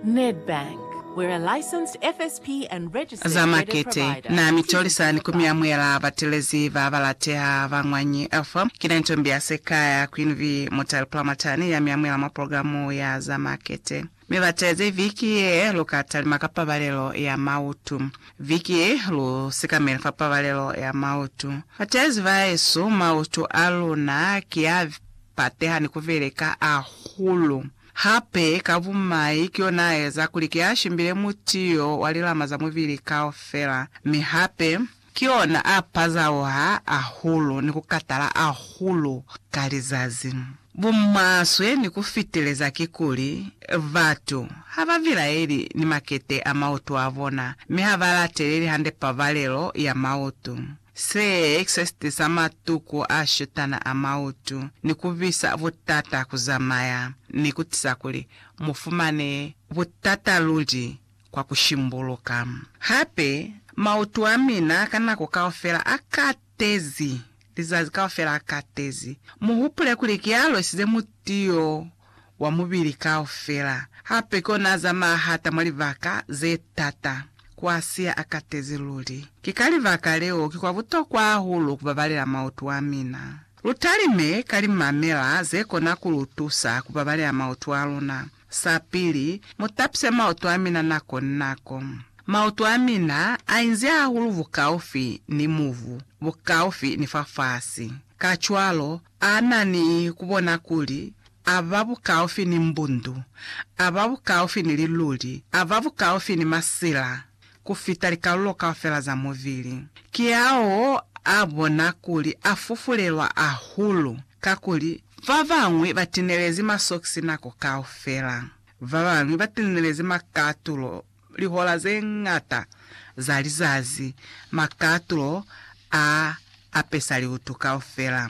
Nedbank, we're a licensed FSP and registered za credit makete provider. na mi tolisa ni ku mi amuhela batelezi ba ba lateha ba Ngwanyi Alpha. Ki na ntombi ya sekaya ku Yunivi Mutale Pulamatani ya mi amuhela mwa programu ya za makete. Mi batelezi viki ye lu ka talima ka pabalelo ya mautu. Viki ye lu sikamele fa pabalelo ya mautu. Batelezi ba yesu, mautu a luna ki a pateha ni ku veleka ahulu. Hape ka bumai ki yona a eza kuli ki a shimbile mutiyo wa lilama za mubili kaufela, mi hape ki yona a pazauha ahulu ni ku katala ahulu ka lizazi. Bumaswe ni ku fitileza kikuli, batu ha ba bilaeli ni makete a mautu a bona, mi ha ba lateleli hande pabalelo ya mautu. Se exorcist sa matuku a shutana a mautu ni ku bisa butata ku zamaya ni ku tisa kuli mu fumane butata luli kwa ku shimbuluka. Hape, mautu a mina ka nako kaufela a katezi, lizazi kaufela a katezi. Mu hupule kuli ki alwesize mutu yo wa mubili kaufela. Hape kona azamaya hata mwa libaka ze tata, kwa siya a katezi luli. Ki ka libaka leo ki kwa butokwa hahulu kubabalela mautu a mina. Lu talime ka limamela ze kona ku lu tusa kubabalela mautu a luna. Sa pili, mu tapise mautu a mina nako ni nako. Mautu a mina a inzi hahulu bukaufi ni mubu, bukaufi ni fafasi. Kacwalo, A na ni ku bona kuli a ba bukaufi ni mbundu, a ba bukaufi ni liluli, a ba bukaufi ni masila ku fita likalulo kaufela za mubili. Kiaho a bona kuli a fufulelwa ahulu, kakuli ba bañwi ba tinelezi masokisi nako kaufela, ba bañwi ba tinelezi makatulo, Lihola ze ñata za lizazi, makatulo a apesa liutu kaufela.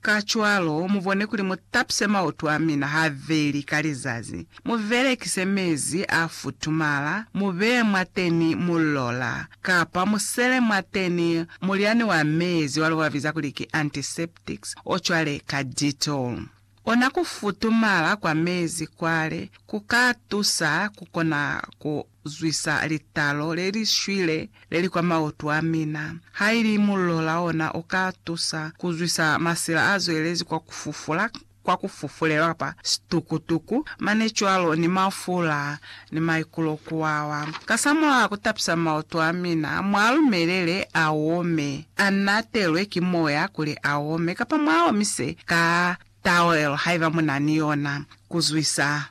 Kacwalo, mu bone kuli mu tapise mautu a mina habeli ka lizazi, mu belekise mezi a futumala, mu beye mwateni mulola, kapa mu sele mwateni mulyani wa mezi wa lubwa biza kuli ki antiseptics, o cwale ka Dettol. Kona ku futumala kwa mezi kwale ku ka tusa ku kona ku zwisa litalo le li shwile le li kwa mautu a mina. Ha ili mullo la ona u ka tusa ku zwisa masila a zwelezi kwa ku fufula, kwa ku fufulelwa kapa situkutuku, mane cwalo ni mafula ni maikulo ku wawa. Kasamulaho ku tapisa maoto a mina, mu a lumelele a ome, a natelwe ki moya kuli a ome, kapa mu a omise ka tawelo haiba mu na ni yona, ku zwisa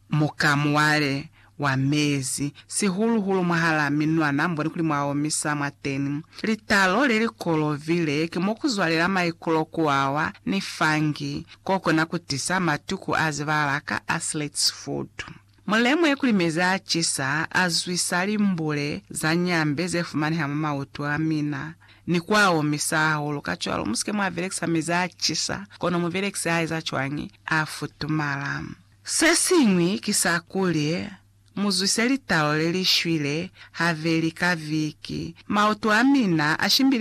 mukamuwale wa mezi, sihulu-hulu mwahalaa minwana, mubone kuli mwa omisa mwateni. Litalo le li kolovile ki mo ku zwalela maikulo ku wawa ni fungi. Ko kona ku tisa matuku a zibala ka athlete's foot. Mulemu ye kuli mezi a cisa a zwisa limbule za nyambe ze fumaneha mwa mautu a mina, ni ku a omisa hahulu. Kacwalo, mu si ke mwa belekisa mezi a cisa, kono mubelekisi a eza cwañi? A futumala. Se siñwi ki sa kuli, mu zwise litalo le li shwile haveli ka viki. Mautu a mina a shimbile